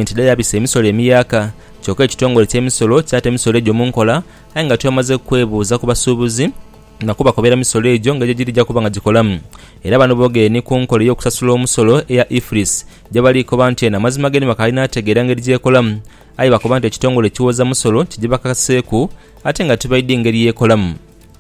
Gavumenti dha yabisa emisolo emiyaaka, kyoka ekitongole eky'emisolo kyata emisolo egyo mu nkola aye nga twemaze kwebuuza ku basuubuzi na kubakobera misolo egyo nga gyegiri eja kuba nga gikolamu era bano boogere ni ku nkola ey'okusasula omusolo eya IFRIS gyebali koba nti eno amazima g'eno bakaali n'ategeera ngeri gy'ekolamu aye bakoba nti ekitongole ekiwooza musolo kigibakakaseeku ate nga tibaidhi ngeri y'ekolamu.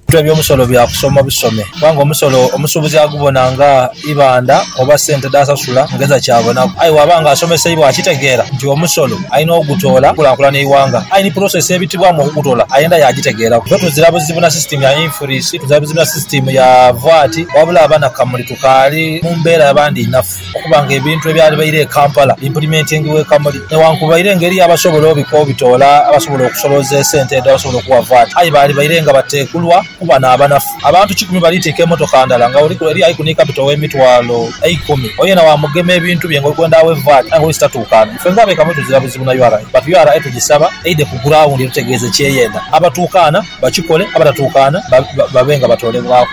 Ebitwe by'omusolo bya kusoma busome kubanga omusolo omusuubuzi agubona nga ibandha oba sente dh'asasula ng'eza kyabonaku. Aye bw'aba ng'asomeseibwa akitegeera nti omusolo alina ogutoola okukulaakulana eighanga, aye ni pulosesi ebitibwamu okugutoola ayenda yaagitegeeraku. Ffe tuzira buzibu na sisitiimu ya infuriisi, tuzira buzibu na sisitiimu ya vaati, wabula abanakamuli tukaali mu mbeera ya bandhiinafu. Okuba nga ebintu ebyalibaire e Kampala bimpulimentingibwa e Kamuli, newankubaire nga eriyo abasobola obika obitoola abasobola okusoloza esente edho abasobola okuwa VAT, aye baalibaire nga bateekulwa kuba n'abanafu. Abantu kikumi baliitiika emotoka ndala nga buli eriyo aliku ni kapito w'emitwalo eikumi. Oyo yena waamugema ebintu bye nga oli kwenda awe VAT aye nga oli sitatuukaana. Ife ng'abe Kamuli tuzira buzibu na ura but ura tugisaba eidhe ku grawundi etutegeeze ky'eyenda. Abatuukaana bakikole, abatatuukaana babe nga batoolebwaku.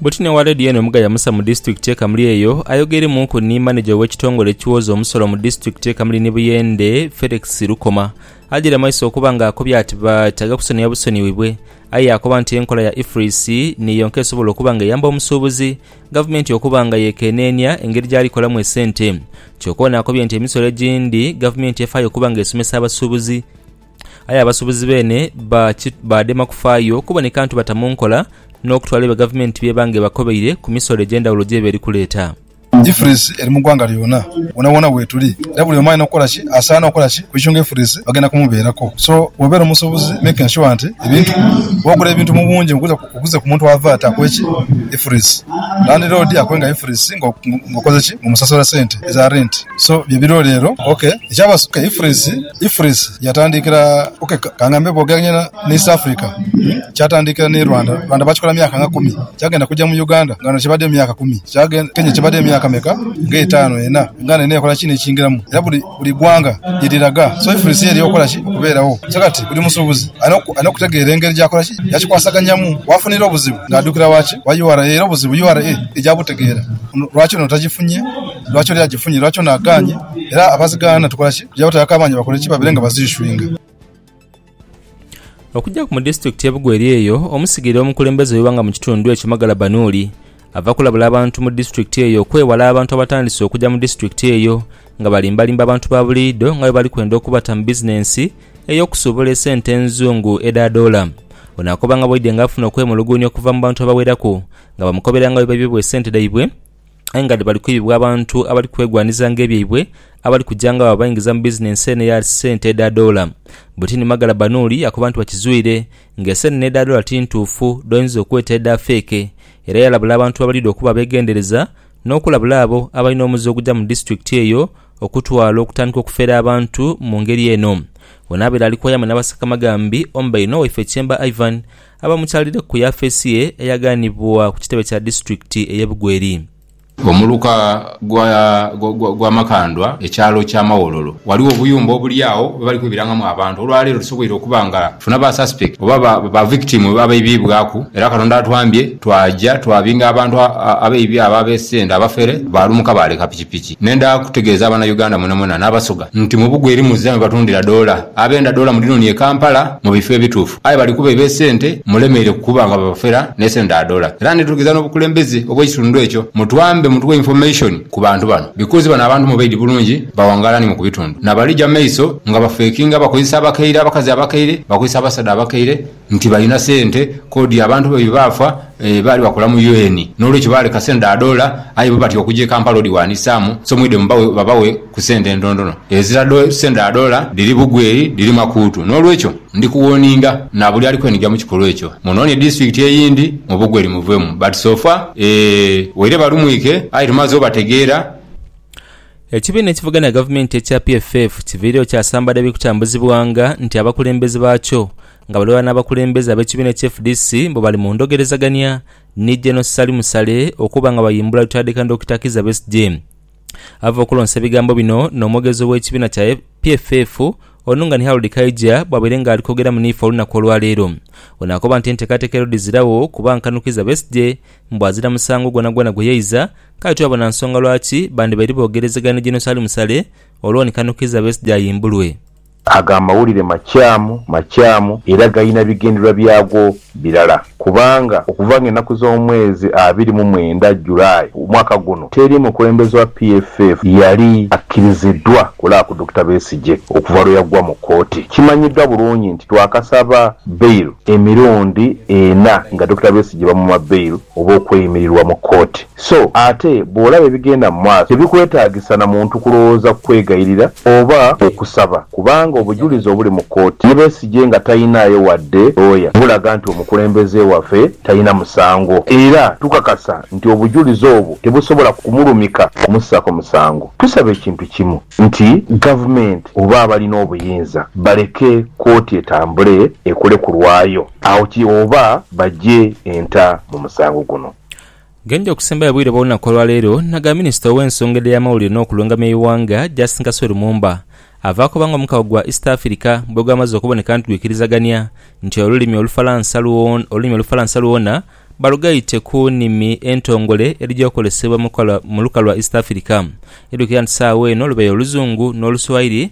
Butine wa leediyo eno Mugaia Musa mu disitulikiti ye Kamuli eyo ayogeirmuuku ni maneja ow'ekitongole ekiwooza omusolo mu disitulikiti ye Kamuli ni Buyende, Felix Lukoma ajaire mu maiso okuba nga akobye ati beetaaga kusonioa busonioibwe aye yaakoba nti enkola ya IFRIS ni yonka esobola okuba nga eyamba omusuubuzi gavumenti okuba nga yeekeneenia engeri gyali kolamu esente. Kyoka ono akobye nti emisolo egindi gavumenti efaayo okuba nga esomesa abasuubuzi Aye abasuubuzi beene baadema kufaayo kubone kantu bata mu nkola n'okutwala ebyo gavumenti by'eba nga ebakobeire ku misolo egy'endhawulo gy'eba eri kuleeta. Ifilisi eri mu ggwanga lyona, wonawona wetuli, era buli omu alina kukola ki? Asaana okukola ki? Okuichunga ifilisi bagenda kumubeeraku. So bwobeera omusuubuzi make ensure nti ebintu, bwogula ebintu mu bungi, oguza. Okuze ku muntu ava ati akwe ki ifurisi landi lodi akwe nga ifurisi nga okoze ki nga omusasula sente eza renti so bye biriwo lero ok ekyaba ok ifurisi ifurisi yatandikira ok kangambe bwogeranya ne east Africa kyatandikira ni Rwanda Rwanda bakikola myaka nga kumi kyagenda kuja mu Uganda nga wano kibade myaka kumi Kenya kibade myaka meka nga etano ena Uganda yona yakola ki nekyingiramu era buli Buli ghanga ye liraga soifurisi ye ly'okola ki okubeeragho. So kati buli musuubuzi alina okutegeera engeri gy'akola ki, gy'akikwasaganyamu. W'afunira obuzibu ng'adukira wa ki? Wa ura. Era obuzibu ura eija butegeera lwaki ono tagifunye, lwaki ole agifunye, lwaki ono agaanye. Era abazigaana tukola ki? Tuja batayoka amaani bakole ki? Babeere nga baziiswinga. Okugyaku mu disitulikiti ye Bugweri eyo omusigire w'omukulembeze w'eighanga mu kitundu ekyo Magala Banuuli ava kulabula abantu mu disitulikiti eyo okwewala abantu abatandise okugya mu disitulikiti eyo nga balimbalimba abantu ba buliidho nga bwebali kwenda okubata mu bizinensi ey'okusuubula esente enzungu edha doola. Ono akoba nga bwaidhe nga afuna okwemuluguunya okuva mu bantu abaweraku nga bamukobera nga bwebaibibwa esente dhaibwe. aye nga dhibali kwibibwa abantu abali kwegwanizanga ebyaibwe abali kuja nga babaingiza mu bizinensi eno eya sente edha doola. Butini Magala Banuuli akoba nti bakizwire nga eseenene edha doola ti ntuufu dh'oyinza okweta edha feeke era yalabula abantu abalidha okuba abeegendereza n'okulabula abo abalina omuze oguja mu disitulikiti eyo okutwala okutandika okufera abantu mu ngeri eno. Ono abaire ali kwaya mwe n'abaseka magambi omu baine Owaife Kyemba Ivan Abamukyalire ku yafeesi ye eyaganibwa ku kitebe kya disitulikiti eye Bugweri. Omuluka gwa Makandwa ekyalo kya Mawololo waliwo obuyumba obuli agho bwebali kwebirangamu abantu olwa leero tusoboire okuba nga tufuna ba suspect oba ba victim abaibibwaku era katonda atwambye twaja twabinga abantu abaibi abo abesenda abafere balumuka baleka pikipiki nenda kutegeeza abana Uganda mwenamwena nabasoga nti mubugweri muzira mwebatundira doola abenda doola mudinonie Kampala mubifo ebituufu. Aye bali kuba eb'esente mulemeire kuba nga babafera n'esente dha dollar. Era ndidhulukiza n'obukulembeze obw'ekitundu ekyo mutwambe mutuwe information ku bantu bano because bano abantu mubaidhi bulungi bawangaala ni mu ku bitundu na bali ja maiso nga bafekinga bakozesa abakaire abakazi abakaire bakozesa abasaadha abakaire nti balina sente kodi abantu baibwe baafa Baali bakola mu UN, n'olwekyo baaleka sente dha doola, aye bo batya okuja e Kampala odhiwandiisaamu, so mwidhe mubawe babawe ku sente entontono. Ezira sente dha doola dhiri bugweri, dhiri makuutu. N'olwekyo ndi kuwooninga na buli ali kweniga mu kikolwa ekyo, munoonie disitulikiti eyindi mu bugweri muveemu. But so far, ee, waire balumwike, aye tumaze obategeera. Ekibiina ekivuganya gavumenti ekya PFF kiviireyo kyasambala ebiri kutambuzibwanga nti abakulembeze baakyo nga bali ghalala n'abakulembeze ab'ekibiina ki fdc mbu bali mu ndhogerezagania ni Gen Ssali Musale okuba nga bayimbula Lutaadhika Dokita Kizza Besigye. Ava okulonsa ebigambo bino n'omwogezi ow'ekibiina kya PFF ono nga ni Harold Kaija bwabaire nga ali kwogeramu niife olunaku olwaleero. Ono akoba nti enteekateeka ero dhiziragho kuba nkanu Kizza Besigye mbu azira musango gwonagwona gwe yaiza kale tibabona nsonga lwaki bandibaire boogerezegania ni Gen Ssali Musale olwo ni kanu Kizza Besigye ayimbulwe. Ago amawulire makyamu, makyamu, era galina bigendererwa byago birala. Kubanga, okuva nga enaku z'omwezi abiri mu mwenda, July, omwaka guno, teri mukulembeze wa PFF yali akkiriziddwa kulaba ku Dokita Besigye okuva lwe yaggwa mu kkooti. Kimanyiddwa bulungi nti twakasaba bail emirundi ena nga Dokita Besigye bamuma bail oba okweyimirirwa mu kkooti. So ate bw'olaba ebigenda mu maaso, tebikwetaagisa na muntu kulowooza ku kwegayirira oba okusaba, kubanga obujulizi obuli mu kooti ye Besigye nga talinaayo wadde looya, bulaga nti omukulembeze waffe talina musango. Era tukakasa nti obujulizi obwo tebusobola kumulumika kumussaako musango. Tusaba ekintu kimu nti Gavumenti oba abalina obuyinza baleke kooti etambule ekole ku lwayo, awo kiri oba baggye enta mu musango guno. Genje okusembayo obwire bw'olunaku olwaleero naga Minisita ow'ensonga edh'eyamawulire n'okulungamya eighanga Justine Kasozi Lumumba ava koba nga omukago gwa East Africa bwegwamaze okuboneka nti gwikirizagania nti olulimi olufalansa olulimi olufalansa lwona balugaite ku nimi entongole edhija okozesebwa mu luka lwa East Africa. Idhukira nti sawa eno lubaire oluzungu n'oluswahili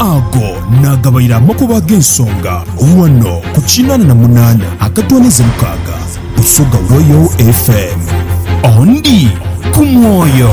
Ago naagabaire amakubo ag'ensonga ghano ku kinaana na munaana akatoonaiza mukaaga Busoga Royal FM. Ondi ku mwoyo.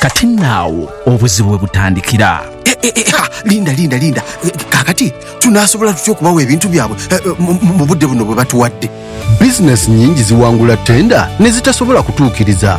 Kati nno agho obuzibu we butandikira. Linda, linda, linda. Kaakati tunaasobola tutya okubawa ebintu byabwe mu budde buno bwe batuwadde? Bizineesi nnyingi ziwangula ttenda ne zitasobola kutuukiriza.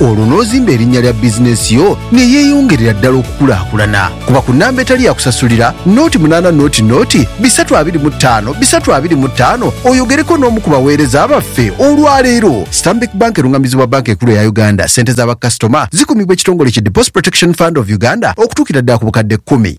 Olwo n'ozimba erinnya lya bizinensi yo ne yeeyongerera ddala okukulaakulana. Kuba ku nnamba etali ya kusasulira, noti munaana noti noti bisatu abiri mu ttaano bisatu abiri mu ttaano oyogereko n'omu ku baweereza baffe olwaleero. Stanbic Bank erung'amizibwa Bbanka Enkulu eya Uganda. Ssente za bakasitoma zikumibwa ekitongole ki Deposit Protection Fund of Uganda okutuukira ddala ku bukadde kkumi.